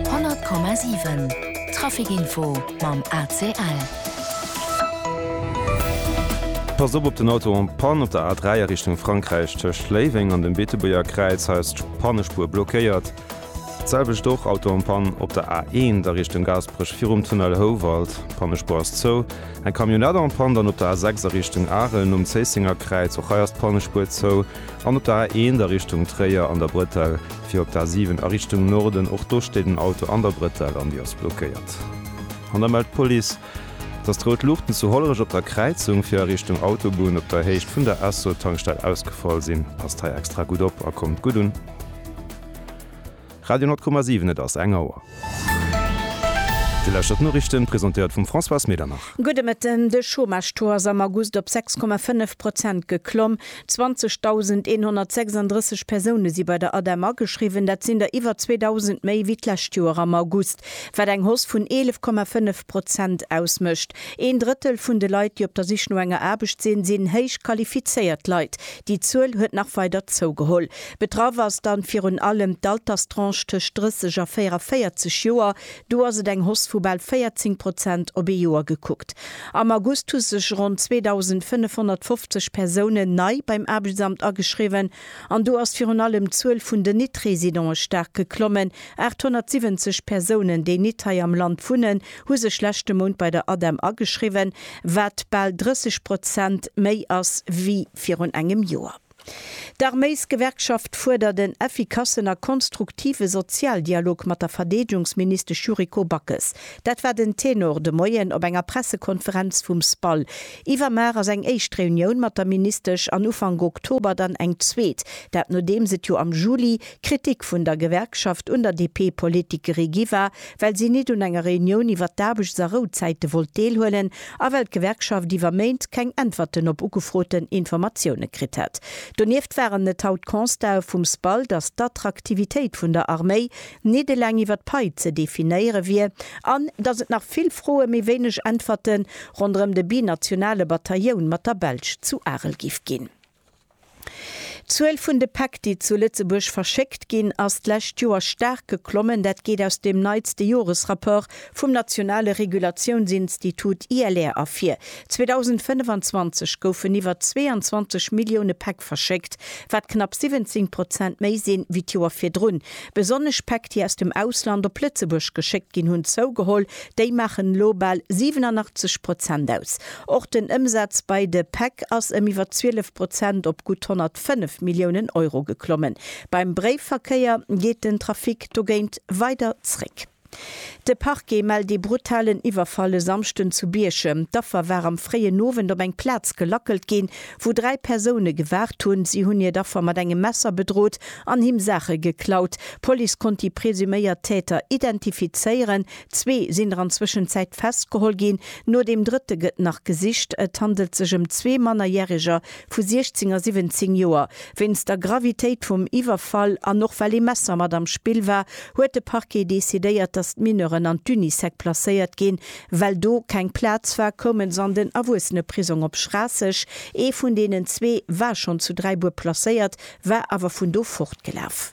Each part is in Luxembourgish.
100,7 Traficinfo mam ACL. Passt op op den Auto en Panne op der A3 a Richtung Frankräich, tëscht Léiweng an dem Beetebuerger Kräiz. Hei ass d'Pannespuer blockéiert. D'selwecht och, Auto en Panne op der A1 a Richtung Gaasperech virum Tunnel Houwald. D'Pannespuer ass zou. Eng Camionnette en Panne dann op der A6 a Richtung Arel nom Zéissenger Kräiz. Och hei ass d'Pannespuer zou. An op der A1 a Richtung Tréier an der Bretelle fir op d'A7 a Richtung Norden. Och do steet en Auto an der Bretelle an déi ass blockéiert. An da mellt d'Police, dass d'rout Luuchten zu Hollerech op der Kräizung fir a Richtung Autobunn op der Héicht vun der Esso-Tankstell ausgefall sinn. Passt hei extra gutt op a kommt gutt un. Radio 10,7 Et ass eng Auer. Dir lauschtert d'Noriichten, presentéiert vum Françoise Medernach. Gudde Mëtten. De Chômage-Taux ass am August op 6,5 Prozent geklomm. 20.136 Persoune si bei der ADEM ageschriwwen. Dat sinn der iwwer 2.000 méi wéi d'lescht Joer am August, wat eng Hausse vun 11,5 Prozent ausmécht. Een Drëttel vun de Leit, déi op der Sich no enger Aarbecht sinn, sinn héich qualifizéiert Leit. Déi Zuel huet nach weider zougeholl. Betraff ass dann virun allem d'Alterstranche tëscht 30 a 44 Joer, do ass et eng Hoss vu bal 14 Prozent op ee Joer gekuckt. Am August hu sech ronn 2.550 Persounen nei beim Aarbechtsamt ageschriwwen an do ass virun allem d'Zuel vun den Nit-Residente staark geklommen, 870 Persounen, déi nit hei am Land wunnen, hu sech leschte Mount bei der ADEM ageschriwwen, wat bal 30 Prozent méi ass wéi virun engem Joer. D'Arméisgewerkschaft fuerdert en effikassen a konstruktive Sozialdialog mat der Verdeedgungsministesch Yuriko Backes. Dat war den Tenor de Moien op enger Pressekonferenz vum SPAL. Iwwermar ass eng éischt Reunioun mat der Ministesch an Ufank Oktober dann eng zweet. Dat nodeems et jo am Juli Kritik vun der Gewerkschaft un der DP-Politikerie gi war, well si nit un enger Reunioun iwwert d'Aarbechts a Rouzäite wollt deelhuelen a well d'Gewerkschaft iwwer Méint keng Äntwerten op ugefroten Informatioune kritt hätt. Donieft waren et haut Constatë vum SPAL, datt d'Attraktivitéit vun der Arméi nit eleng iwwer d'Pai ze definéiere wier an datt et nach vill Froe mee wéineg Äntwerte ronderëm de binationale Batailloun mat der Belsch zu Arel géif ginn. D'Zuel vun de Päck, déi zu Lëtzebuerg verschéckt ginn, ass d'lescht Joer staark geklommen. Dat geet aus dem neitste Joresrapport vum nationale Regulatiounsinstitut ILR ervir. 2025 goufen iwwer 22 Millioune Päck verschéckt, wat knapp 17 Prozent méi sinn, wéi d'Joer virdrun. Besonnesch Päck, déi aus dem Ausland op Lëtzebuerg geschéckt ginn, hunn zougeholl. Déi maachen elo bal 87 Prozent aus. Och den Ëmsaz bei de Päck ass ëm iwwer 12 Prozent op gutt 105 Milliounen Euro geklommen. Beim Bréifverkéier geet den Trafic dogéint weider zréck. De Parquet mellt ee brutalen Iwwerfall e Samschden zu Bierchem. D'Affer war am fréien Owend op eng Plaz gelackelt ginn, wou dräi Persoune gewaart hunn. Si hunn hiert Affer mat engem Messer bedrot an him Saache geklaut. D'Police konnt déi presuméiert Täter identifizéieren. Zwee sinn der an Zwëschenzäit festgeholl ginn, no deem drëtte gëtt nach gesicht. Et handelt sech ëm zwee Mannerjäreger vu 16 a 17 Joer. Wéinst der Gravitéit vum Iwwerfall an och well ee Messer mat am Spill war, huet de Parquet decidéiert, datt d'Mineuren an d'Unisec placéiert ginn. Well do keng Plaz war, koume se an den Erwuesseneprisong op Schraasseg. Ee vun deenen zwee war schonn zu Dräibuer placéiert, war awer vun do fortgelaf.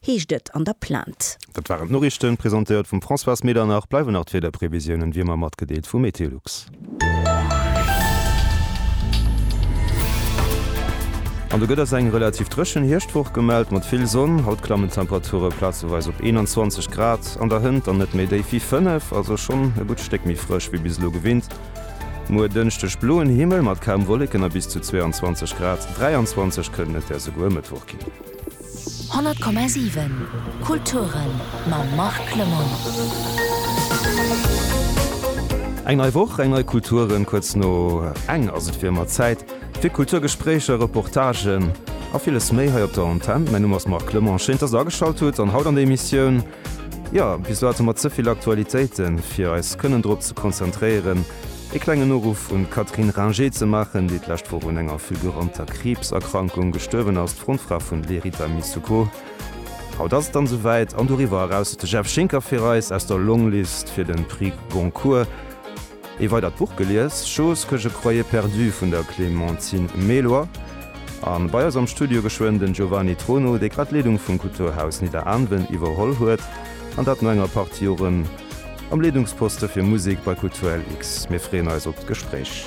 heescht et an der Plainte. Dat waren d'Noriichten, presentéiert vum Françoise Medernach. Bleiwen nach d'Wiederprevisiounen, wéi ëmmer, matgedeelt vu MeteoLux. An do gëtt eis eng relativ dréchen Hierschtwoch gemellt, mat vill Sonn. Haut klammen d'Temperature plazeweis op 21 Grad an der Hënt, an net méi déif wéi 5, also schonn e gutt Stéck méi frësch wéi bis elo gewinnt. Muer Dënschdeg bloen Himmel mat kaum Wolleken a bis zu 22 Grad, 23 kënnen et där souguer e Mëttwoch ginn. 100,7 Kulturen mam Marc Lemmon. Eng nei Woch, eng nei Kulturen, kuerz no eng ass et fir ëmmer Zäit fir Kulturgespréicher, Reportagen a villes méi hei op der Antenn. Mäin Numm ass Marc Clement, schéin dass der ageschalt hutt an haut an der Emissioun, jo, bis elo hate mer ze vill Aktualitéiten fir eis kënnen drop ze konzentréieren, Ee klengen Uruff un d'Catherine Ringer ze maachen, déi d'lescht Woch un enger fulguranter Kriibserkrankung gestuerwen ass, d'Frontfra vun Lerita Missouko. Haut ass et dann souwäit, an doriwwer eraus huet de Jeff Schinker fir eis aus der Longlist fir den Prix Goncourt ee weidert Buch gelies, Choses que je croyais perdues vun der Clémentine Méloy. A bei eis am Studio geschwënn den Giovanni Trono, dee grad d'Leedung vum Kulturhaus Nidderaanwen iwwerholl huet, an dat no enger Partie Joren. Am Leedungsposte fir Musek bei Kulturlx. Mir freeën eis op d'Gespréich.